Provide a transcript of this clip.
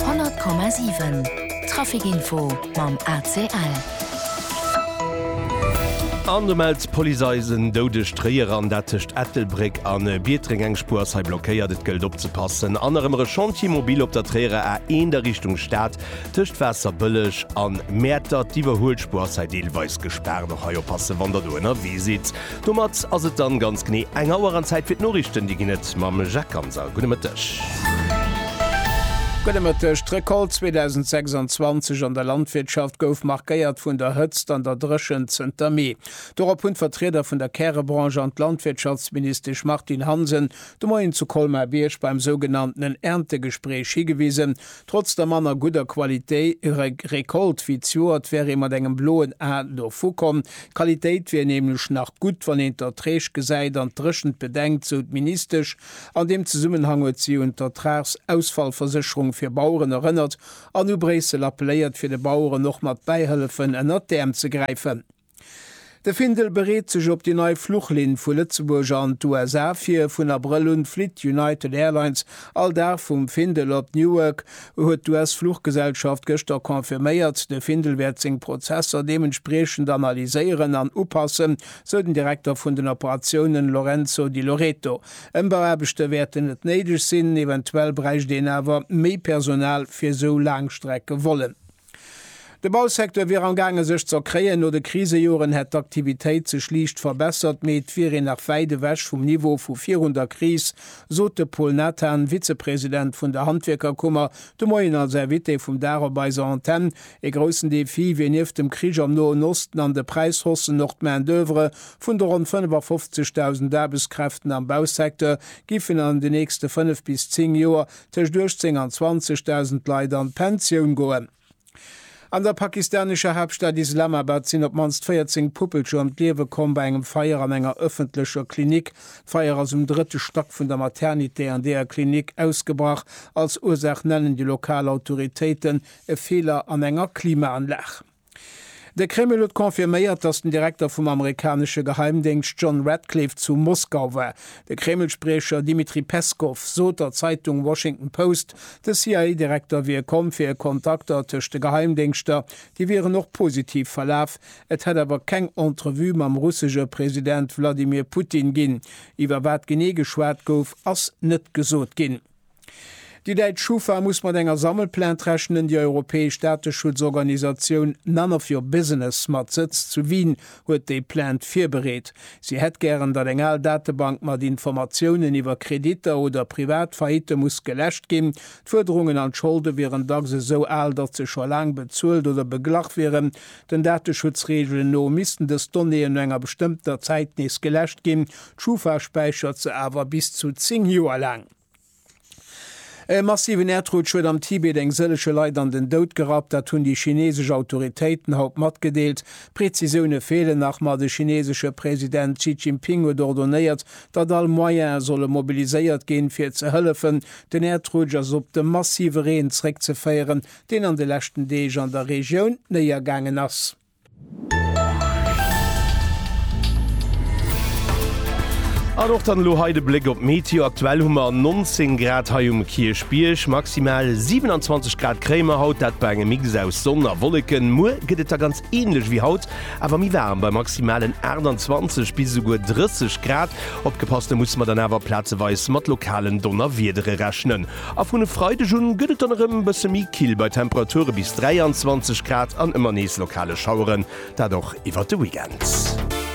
100,7 Trafic Info mam ACL. An do mellt d'Police eis en doudegt Tréier an dat tëscht Ettelbréck a Biertreng. Eng Spuer ass hei blockéiert, et gëllt opzepassen. An erëm e Chantier mobile op der Tréierer A1 a Richtung Stad tëscht Waasserbëlleg an Mäertert. D'Iwwerhuelspuer ass hei deelweis gespaart. Och hei oppassen, wann der do ënnerwee sidd. Domat ass et dann ganz genee eng Auer an Zäit fir d'Noriichten. Déi ginn et mam Jacques Ganser. Gudde Mëtteg. Gudde Mëtteg. D'Recolte 2026 an der Landwirtschaft gouf markéiert vun der Hëtzt an der Dréchent zënter Mee. Dorop hunn d'Vertrieder vun der Kärebranche an d'Landwirtschaftsministesch Martine Hansen de Moien zu Colmar-Bierg beim sougenanntenen Erntegespréich higewisen, Trotz der manner gudder Qualitéi Récolte wéi d'Joert wär ee mat engem bloen A dovu komm. D'Qualitéit wier nämlech nach gutt, wann een d'Erträg gesäit an d'Dréchent bedenkt, sou d'Ministesch. An deem Zesummenhang huet si un d'Ertragsausfallversécherung fir Baueren erënnert an u Bréissel appelléiert, fir de Baueren och mat Bäihëllefen ënnert d'Äerm ze gräifen. De Findel bereet sech op déi nei Fluchlinn vu Lëtzebuerg an d'USA vir. Vun Abrëll un flitt United Airlines all Dag vum Findel op Newark, huet d'US-Fluchgesellschaft gëschter confirméiert. De Findel wäert seng Prozesser deementspriechend analyséieren an upassen, sou den Direkter vun den Operatiounen Lorenzo Di Loreto. Ëmbauaarbechte wäerten net néideg sinn, eventuell bräicht een awer méi Personal fir sou Laangstreckevollen. De Bausecteur wier am gaange sech z'erkréien. No de Krisejoren hätt d'Aktivitéit sech liicht verbessert, mee et wier een nach wäit ewech vum Niveau vu virun der Kris, sot de Paul Nathan, Vizepresident vun der Handwierkerkummer, de Moien als Invité vum Dag op eiser Antenn. Ee groussen Defi wier nieft dem Krich am Noen Osten an de Präishaussen och d'Main-d'oeuvre. Vun de ronn 55.000 Aarbechtskräften am Bausecteur giffen an den nächste fënnef bis zéng Joer tëscht 18 an 20.000 Leit an d'Pensioun goen. An der pakistanescher Haaptstad Islamabad sinn op d'mannst 14 Puppelcher ëm d'Liewe komm bei engem Feier an enger ëffentlecher Klinik. D'Feier ass um drëtte Stack vun der Maternité an deeër Klinik ausgebrach. Als Ursaach nennen déi lokal Autoritéiten e Feeler an enger Klimaanlag. De Kreml huet confirméiert, datt den Direkter vum amerikanesche Geheimdéngscht John Ratcliffe zu Moskau war. De Kreml-Spriecher Dmitri Peskow sot der Zeitung Washington Post, de CIA-Direkter wier komm fir Kontakter tëscht de Geheimdéngschter, déi wieren och positiv verlaf. Et hätt awer keng Entrevue mam russesche President Wladimir Putin ginn. Iwwer wat genee geschwat gouf, ass net gesot ginn. Déi däitsch Schufa muss mat enger Sammelplainte rechnen. Déi europäesch Dateschutzorganisatioun None of your Business mat Sëtz zu Wien huet déi Plainte virbereet. Si hätt gären, datt eng al Datebank mat Informatiounen iwwer Kreditter oder privat Faillitte muss geläscht ginn. D'Fuerderungen an d'Scholde wieren dacks esou al, datt se scho laang bezuelt oder beglach wieren. Den Dateschutzreegelen no missten dës Donnéeën no enger bestëmmter Zäit nees geläscht ginn. D'Schufa späichert se awer bis zu 10 Joer laang. E massiven Äerdrutsch huet am Tibet eng sëllege Leit an den Doud gerappt. Dat hunn déi chinesesch Autoritéiten haut matgedeelt. Prezisioune feelen nach, ma de chinesesche President Xi Jinping huet ordonéiert, datt all Moyene solle mobiliséiert ginn, fir ze hëllefen. Den Äerdrutsch ass op de massive Reen zeréckzeféieren, deen an de leschten Deeg an der Regioun néiergaangen ass. An och dann elo hei de Bléck op d'Meteo. Aktuell hu mer 19 Grad hei um Kierchbierg, maximal 27 Grad kréie mer haut, dat bei engem Mix aus Sonn a Wolleken. Muer gëtt et da ganz änlech wéi haut, awer méi waarm, bei maximalen 28 bis esouguer 30 Grad. Opgepasst, do musse mer dann awer plazeweis mat lokalen Donnerwiedere rechnen. A vun e Freideg un gëtt et dann erëm e bësse méi kill bei Temperature bis 23 Grad an ëmmer nees lokale Schaueren, dat och iwwert de Weekend.